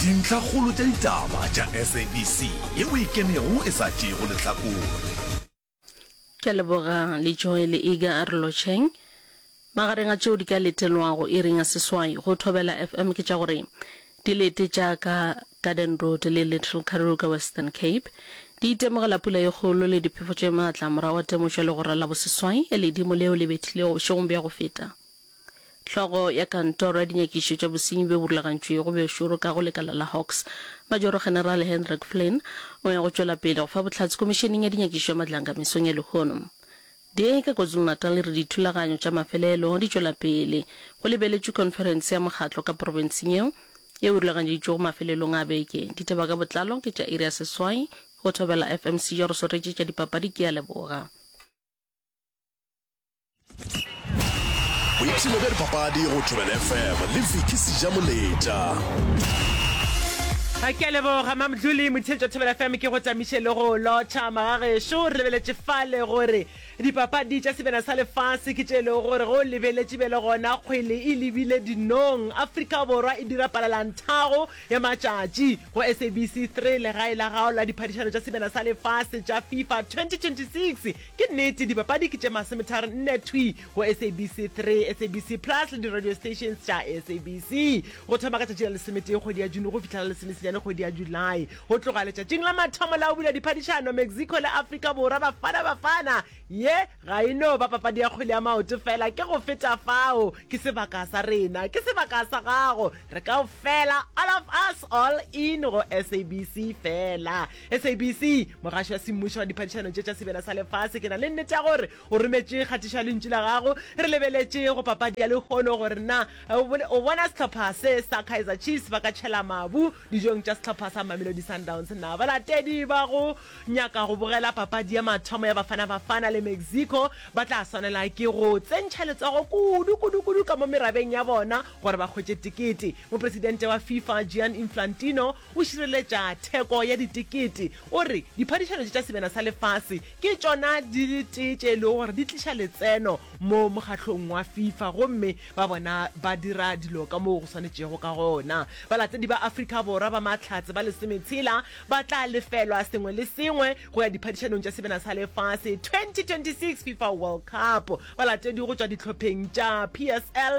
Dintlhakgolo tša ditaba tša SABC ye o e kenego e sa tšeego lehlakore. Ke a leboga le Joel Iga a re lotšheng. Magareng a tšeo di ka letelwago iring ya seswai go Thobela FM ke tša gore di lete tša ka Garden Road le Little Karoo ka Western Cape. Di itemogela pula ye kgolo le diphefo tše maatla morago ga temošo ya legora la boseswai, ledimo leo le bethilego bošegong bja go feta. Hlogo ya Kantoro ya Dinyakišišo tša Bosenyi bjo bo Rulagantšwego bjo Šoro ka go Lekala la Hawks, Majoro-Generale Hendrik Flynn, o ya go tšwela pele go fa bohlatse Komišeneng ya Dinyakišišo ya Matlanga mesong ya lehono. Di ka KwaZulu-Natal e re dithulaganyo tša mafelelo di tšwela pele. Go lebeletšwe khonferense ya mokgatlo ka profenseng yeo, yeo e rulaganyeditšwego mafelelong a beke. Ditaba ka botlalo ke tša iri ya seswai go Thobela FM. Sejo re swaretše tša dipapadi ke a leboga. boipshino bja dipapadi go tšwebel fm le viki seja moletša ga ke a leboga mamdlole motheletša thobela fm ke go tsamiše le go lotšha magagešo re lebeletše fale gore dipapadi tša sebena sa lefase ke tše e lego gore go lebeletše be le gona kgwele e lebile dinong afrika borwa e dira palalanthago ya matšatši go sabc 3 legae la gago la diphadišano tša sebena sa lefase tša fifa 2026 Ke nnete, dipapadi ke tše mase methari nne thwi go SABC 3, SABC Plus le di-radio stations tša SABC. Go thoma ka tšatši la lesometee kgwedi ya June go fihla la lesomesenyane kgwedi ya July. Go tloga letšatšing la mathomo la go bula diphadišano, Mexico le Afrika Borwa, Bafana Bafana. Ye ga e no ba papadi ya kgwele ya maoto feela, ke go feta fao. Ke sebaka sa rena, ke sebaka sa gago, re kaofela, all of us, all in go SABC feela. sabc mogaši wa semmušo wa diphadišano tše tša sebjana sa lefase ke na le nnete ya gore o rometše kgatišo ya lentšu la gago re lebeletše go papadi ya lehono gore na o bona sehlopha se sa kaizer chiefs ba ka tšhela mabu dijong tša sehlopha sa mamelodi sundowns na balatedi ba go nyaka go bogela papadi ya mathomo ya bafana bafana le mexico ba tla swanela ke go tsentšha letsogo kudu kudu kudu ka mo merabeng ya bona gore ba kgwetše tikete mopresidente wa fifa gian inflantino O šireletša theko ya ditekete, o re, Diphadišano tše tša Sebjana sa Lefase ke tšona di le tee tše e lego gore di tliša letseno mo mokgahlong wa Fifa gomme ba bona ba dira dilo ka moo go swanetšego ka gona. Balatedi ba Afrika Borwa ba Mahlatse ba lesometshela ba tla lefelwa sengwe le sengwe go ya Diphadišanong tša Sebjana sa Lefase 2026 Fifa World Cup. Balatedi go tšwa dihlopheng tša PSL,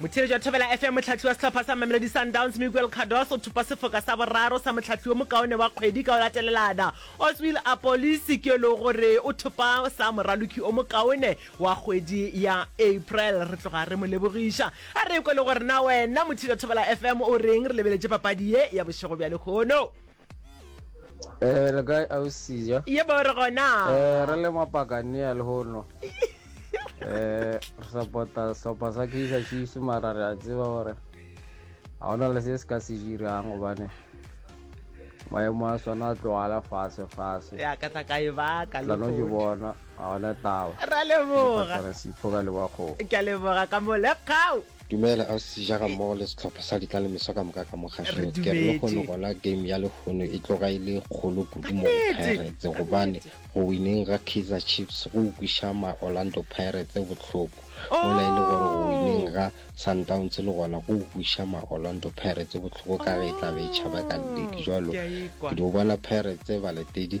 Motheeletši wa Thobela FM, mohlahli wa sehlopha sa Mamelodi Sundowns Miguel Cardoso o thopa sefoka sa boraro sa mohlahli yo mokaone wa kgwedi ka go latelelana, Oswill Apolisi, ke e lego gore o thopa sa moraloki o mokaone wa kgwedi ya April. Re tloga re mo lebogiša. A re kwe le gore na wena motheeletši wa Thobela FM o reng re lebeletše papadi ye ya bošego bja lehono. Eh, le kae ausi ja? Ye ba re gona. Eh, re le mapakania le hono. Eh, re support-a sehlopha sa Kaizer Chiefs mara re a tseba gore ga ona le se se ka se dirang gobane maemo a sona a tlogala fase fase. Ya ka tla ka e baka lo. Lano ke bona ga ona taba. Ra leboga. Re sipho ka leboga go. Ke leboga ka mo le kgao. Dumela ausi ja gammogo le setlhopha sa ditlalemiswa ka moka ka mo gašo ke re le kgone gona game ya lehono e tloga e le kgolo kudu mo go pirates gobane go wineng ga kaizer chiefs go ukwiša ma orlando pirates bohloko mola e le gore go wineng ga sundowns le gona go ukwiša ma orlando pirates bohloko ka ge e tlabe e tšhaba ka ledi jalo ke di o bona pirates baletedi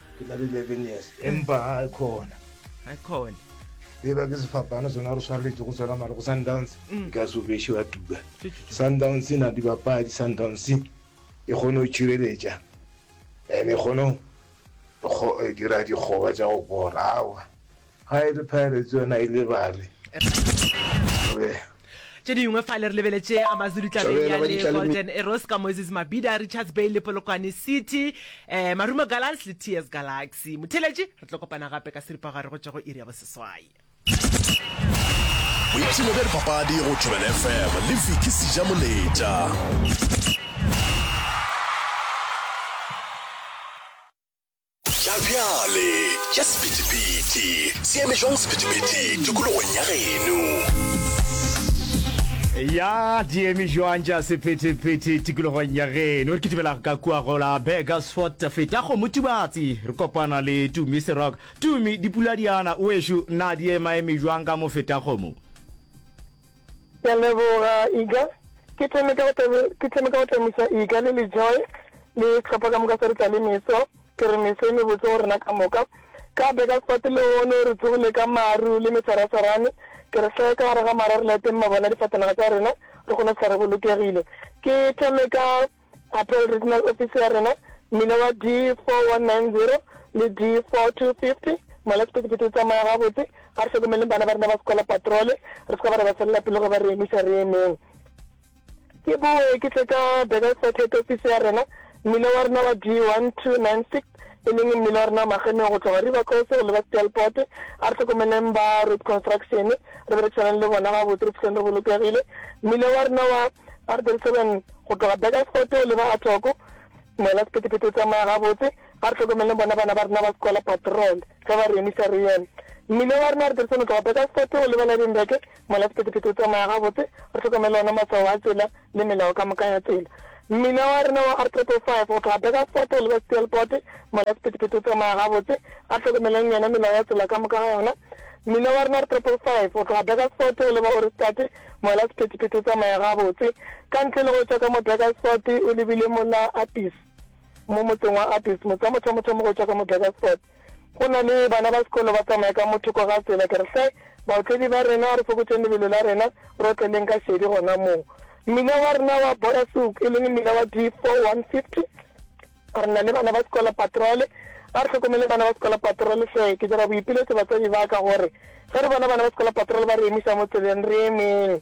ke na le eleven years empa ga e khona ga e khona eba ke sefapano sona re swareletse go tswela mare go sundowns mm. ka sobeshe wa tuba sundowns e na dibapadi sundowns e kgone go tšireletša and e kgone go eh, dira dikgoba tša go bora awa Ga e re Pirates yona e lebale. Re. Tše dingwe fale re lebeletše Amazulu tlabeng ya le Golden Arrows ka Moses Mabida, Richards Bay le Polokwane City, um Marumo Gallants le TS Galaxy. Motheeletši, re tlo kopana gape ka seripagare go tšwa go iri ya boseswai. Boipshino bja dipapadi go Thobela FM le Vicky Sejamoleta. Tla bjale, tša sephethephethe, se eme jwang sephethephethe tikologong ya geno? ya diemi joang ja sephetephete tikologong ya geno re kitimela ka kua gola begasfort feta go motubatsi re kopana le tumi serok tumi dipuladiana oešo na di emaeme joang ka mo feta gomo Ke a leboga Iga. Ke thome ka go tlemisa Iga le Lejoy le tlhopha ka moka sa ditla le meso. Ke re meso e mebotse go rena ka moka. Ka beka sefate lehono re tsogile ka maru le mesarasarane. Ke re hlaya ka gare ga mara re layeteng mabone a difatanaga tsa rena re kgone go fihla re bolokegile. Ke thome ka Patrol Regional Office ya rena, mmila wa D4190 le D4250, mola sephethephethe o tsamaya gabotse, a re hlokomeleng bana ba rena ba sekola patrole, re se ka ba re ba felela pelo ge ba re emiša re emeng. Ke boe ke tle ka Burgersfort Head Office ya rena, mmila wa rena wa D1296, e leng mmele wa rena wa magemeng go tloga River Coast go leba Stelport. A re hlokomeleng ba Road Construction, re be re tshwanang le bona gabotse, re fihleng re bolokegile. Mmele wa rena wa R37 go tloga Burgersfort go leba Atoko, moela sephethephethe o tsamaya gabotse. A re hlokomeleng bona bana ba rena ba sekola patrol ge ba re emisa re eme. Mmele wa rena wa R37 go tloga Burgersfort go leba Lydenburg, Mola sephethephethe o tsamaya gabotse, re hlokomele ona maswao a tsela le melao ka moka ya tsela. Mmina wa rena wa R505 go tloga Burgersfort go leba Steelpoort, Mola sephethephethe o tsamaya gabotse, a hlokomeleng yona melao ya tsela ka moka ga yona. Mmina wa rena R505 go tloga Burgersfort go leba Ohrigstad, Mola sephethephethe o tsamaya gabotse, ka ntle le go tšwa ka mo Burgersfort o lebile mola Appies, mo motseng wa Appies, motse wa mothomothomo go tšwa ka mo Burgersfort. Go na le bana ba sekolo ba tsamaya ka mo thoko ga tsela. Ke re, Hle, baotledi ba rena, re fokotšeng lebelo la rena, re otleleng ka šedi gona moo. Mmila wa rena wa Borasuk, e leng mmila wa D4-150, re na le bana ba sekolo patrole. A re hlokomeleng bana ba sekolo patrole hle. Ke dira boipiletšo batswadi ba ka gore ge re bona bana ba sekolo patrole ba re emiša mo tseleng, re emeng.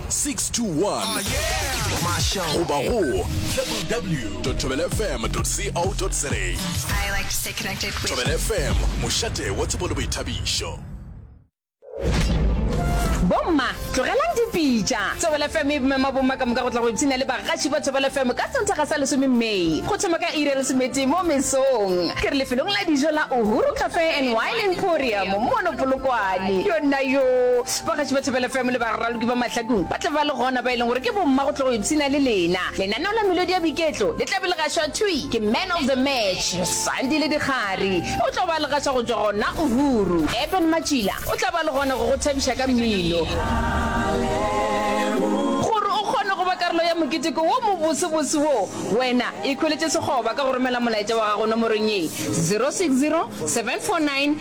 621 masha goba go www thobelfm co za thobelfm mošate wa tsebo le boithabišo bomma tlogelang dipitša thobelfm e mema bomma ka moka go tla go ipshina le bagaši ba thobelfm ka senthaga sa lesome may go thoma ka ire lesometee mo mesong ke re lefelong la dijo la uhuru cafe and wine emporium mono polokwane yona yo Bagaši ba Thobela FM le baraloki ba Mahlakong ba tla ba le gona, ba e leng gore ke bomma go tla go ipshina le lena. Lenaneo la melodi ya boiketlo le tla be le gašwa thwi ke Man of the Match, Sandile Dikgari. O tla ba a le gaša go tšwa gona Uhuru. Eben Matšila o tla ba le gona go go thabiša ka mmino. Gore o kgone go ba karolo ya moketeko wo mobosebose wo, wena ikhweletše sekgoba ka go romela molaetša wa gago nomorong ye, 060 749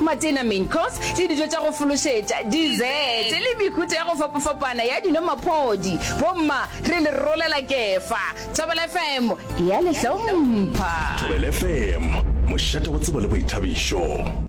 Matena, Main Course, le dijo tša go fološetša, Dessert, le mehuta ya go fapafapana ya dino Maphodi, Bomma, re le rolela kefa. Thobela FM e a le hlompha. Thobela FM, mošate wa tsebo le boithabišo.